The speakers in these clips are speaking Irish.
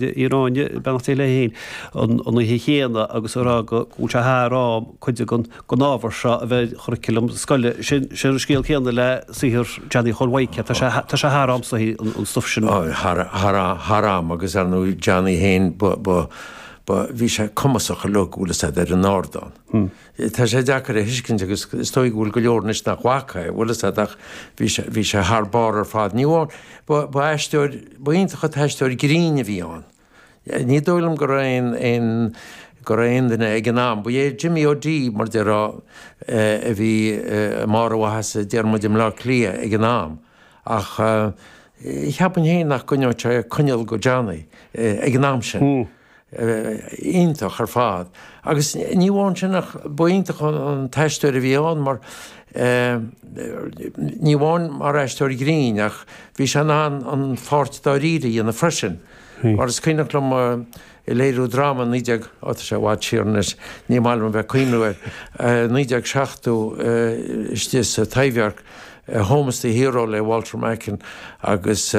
Uí Ráinne, beannacht Dé léi féin, an oíche chéanna agus a rá go bhfuil sé thar am cuid den ábhar seo a bheith ar churiclam scoile. Sin an scéal céanna le saothar Johnny Chóil Mhaidhc, tá sé thar am an stuif sin a. Thar am, agus ar ndóigh Johnny féin, bhí sé cumasach uilig, bhfuil fhios a'd, ar an ardán. Tá sé deacair a thuiscint agus is dóigh go bhfuil go leor anois nach bhfaca é, bhfuil fhios a't ach bhí sé, bhí sé thar barr ar fad. Ní amháin, ba, ba aisteoir, ba iontach an t-aisteoir grinn a bhí ann. Ní dóigh liom go raibh aon, aon, go raibh aon duine ag an am, ba é Jimmy O'Dea mar a déarfá a bhí i mbarr a mhaitheasa déarfaidh muid i mBleá Cliath ag an am ach cheapfainn féin nach gcoinneodh sé coinneal do Johnny ag an am sin. iontach ar fad agus ní amháin sin ach ba iontach an t-aisteoir a bhí ann mar ní amháin mar aisteoir grinn ach bhí sé in ann an pháirt dáiríre a dhéanamh freisin. Mar is cuimhneach liom i léiriú dráma naoi déag, á tá sé i bhfad siar anois, ní maith liom a bheith ag cuimhniú air, naoi déag seachtó istigh sa Taibhdhearc, Home is the Hero le Walter Macken agus,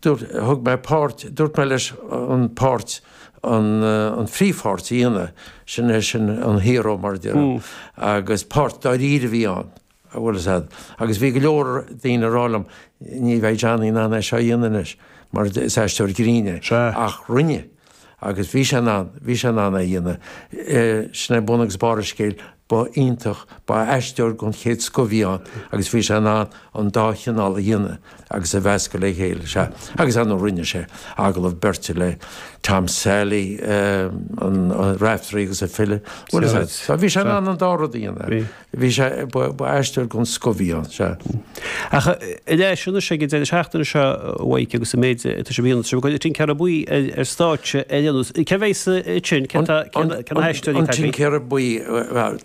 thug mé páirt, dúirt mé leis an páirt an an phríomhpháirt a dhéanamh, sin é sin an hero mar a déarfá agus páirt dáiríre a bhí ann an bhfuil fhios a'd agus bhí go leor daoine ag rá liom ní bheidh Johnny in ann é seo a dhéanamh anois mar is aisteoir grinn é ach rinne. Agus bhí sé in ann, bhí sé in ann é a dhéanamh. Sin é bun agus barr an scéil. Ba iontach, ba aisteoir den chéad scoth a bhí ann agus bhí sé in ann an dá chineál a dhéanamh agus a mheascadh le chéile, sea. Agus ar ndóigh rinne sé agallamh beirte le Tom Sailí, Raiftearaí agus an file. Bhuel, sea, bhí sé in ann an dá rud a dhéanamh. Bhí sé, ba aisteoir den scoth a bhí ann, sea. Ach i leith sin is ag an deireadh seachtaine seo uaidh agus an méid atá sé mhíonna sibh, Tincéara Buí ar stáitse ar aon nós. Cé bhéas ann? Cén tá, cén tá na haisteoirí atá againn? An Tincéara Buí,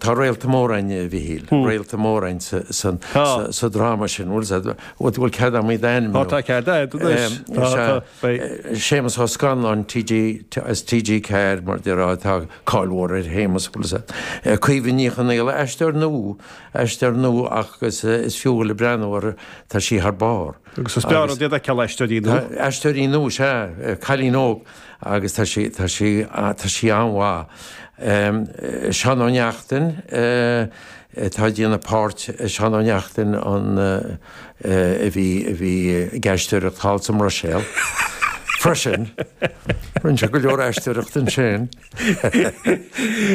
tá réalta móra againn, a Mhichíl, réalta móra againn san, sa, sa dráma sin, bhfuil, bhfuil cead agam iad a ainmniú? Tá, tá cead agad anois. Beidh Séamus Ó Scanláin TG, as TG4 mar a déarfá tá cáil mhór ar Shéamus bhfuil fhios a'd. Caoimhe Ní Chonaola, aisteoir nua, aisteoir nua ach is fiú breathnú uirthi tá sí thar barr. Agus is breá liom iad a fheiceáil aisteoirí nua. Tá aisteoirí nua, sea, cailín óg agus tá sí tá sí tá sí an-mhaith. Seán Ó Neachtain atá ag déanamh páirt Seán Ó Neachtain an, a bhí a bhí ag aisteoireacht thall sa mBruiséil. Freisin, rinne sé go leor aisteoireacht ansin.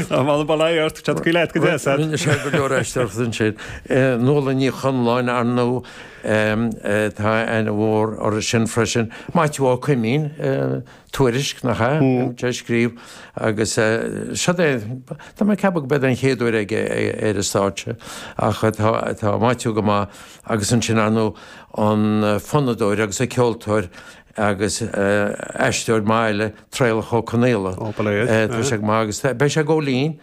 An bhfuil an bail air ort? Tá go leat go deo, said. Rinne sé go leor aisteoireacht ansin. Nuala Ní Chonláin, ar ndóigh, tá aithne mhór uirthi sin freisin. Maitiú Ó Coimín, Tuairisc, nach ea? Bíonn sé ag scríobh agus seo é, tá mé ag ceapadh gurb é an chéad uair aige ar stáitse ach tá Maitiú go maith agus ansin ar ndóigh an fonnadóir agus an ceoltóir agus aisteoir maith eile, Traolach Ó Conghaile. Ó, bail air. Tá sé go maith agus beidh sé ag gabháil fhoinn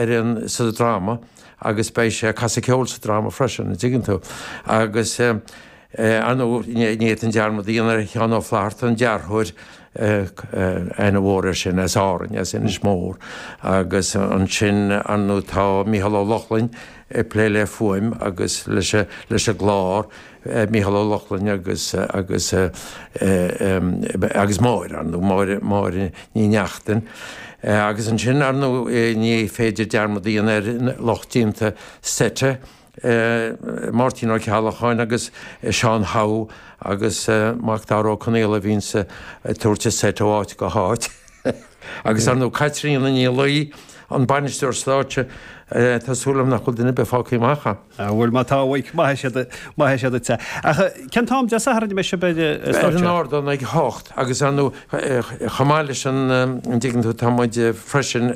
ar an, sa dráma agus beidh sé ag casadh ceoil sa dráma freisin, an dtuigeann tú. Agus Ar ndóigh, ní fhéadfainn dearmad a dhéanamh ar Sheán Ó Flaithearta, an dearthóir, aithne mhór air sin as Árainn, as Inis Mór. Agus ansin, ar ndóigh, tá Mícheál Ó Lochlainn ag plé le fuaim agus leis an gclár, Mícheál Ó Lochlainn agus agus Máire, ar ndóigh, Máire Máire Ní Neachtain. Agus ansin, ar ndóigh, ní féidir dearmad a dhéanamh ar lucht déanta seit Máirtín Ó Ceallacháin agus Seán Howe agus Mac Dara Ó Conaola a bhíonns ag tabhairt an seit ó áit go háit agus ar ndóigh Caitríona Ní Laoi, an Bainisteoir Stáitse, tá súil agam nach bhfuil duine ar bith fágtha amach. An bhfuil? Má tá, oink, maith sibh, maith sibh duitse. Ach cén t-am Dé Sathairn a mbeidh sibh ar an stáitse? Ar an ardán ag a hocht agus ar ndóigh chomh maith leis an, an dtuigeann tú, tá muid freisin,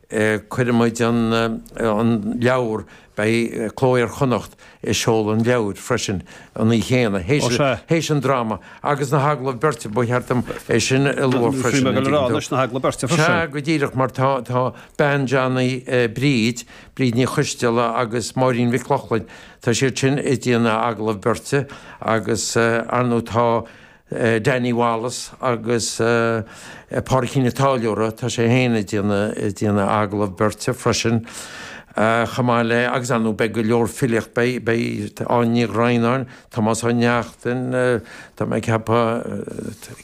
cuirfidh muid an an leabhar beidh Cló Iar-Chonnacht ag seoladh an leabhair freisin an oíche chéanna théis théis an dráma agus na hagallaimh beirte ba cheart dom é sin a lua freisin an dtuigeann tú? Sea go díreach mar tá tá bean Johnny Bríd Bríd Ní Choisdealbha agus Máirín Mhic Lochlainn tá siad sin ag déanamh agallamh beirte agus ar ndóigh tá Danny Wallace agus Pádraicín an Táilliúra, tá sé féin ag déanamh agallamh beirte freisin chomh maith le, agus ar ndóigh beidh go leor filíocht, beidh Áine Ní Dhroighneáin, Tomás Ó Neachtain, tá mé ag ceapadh,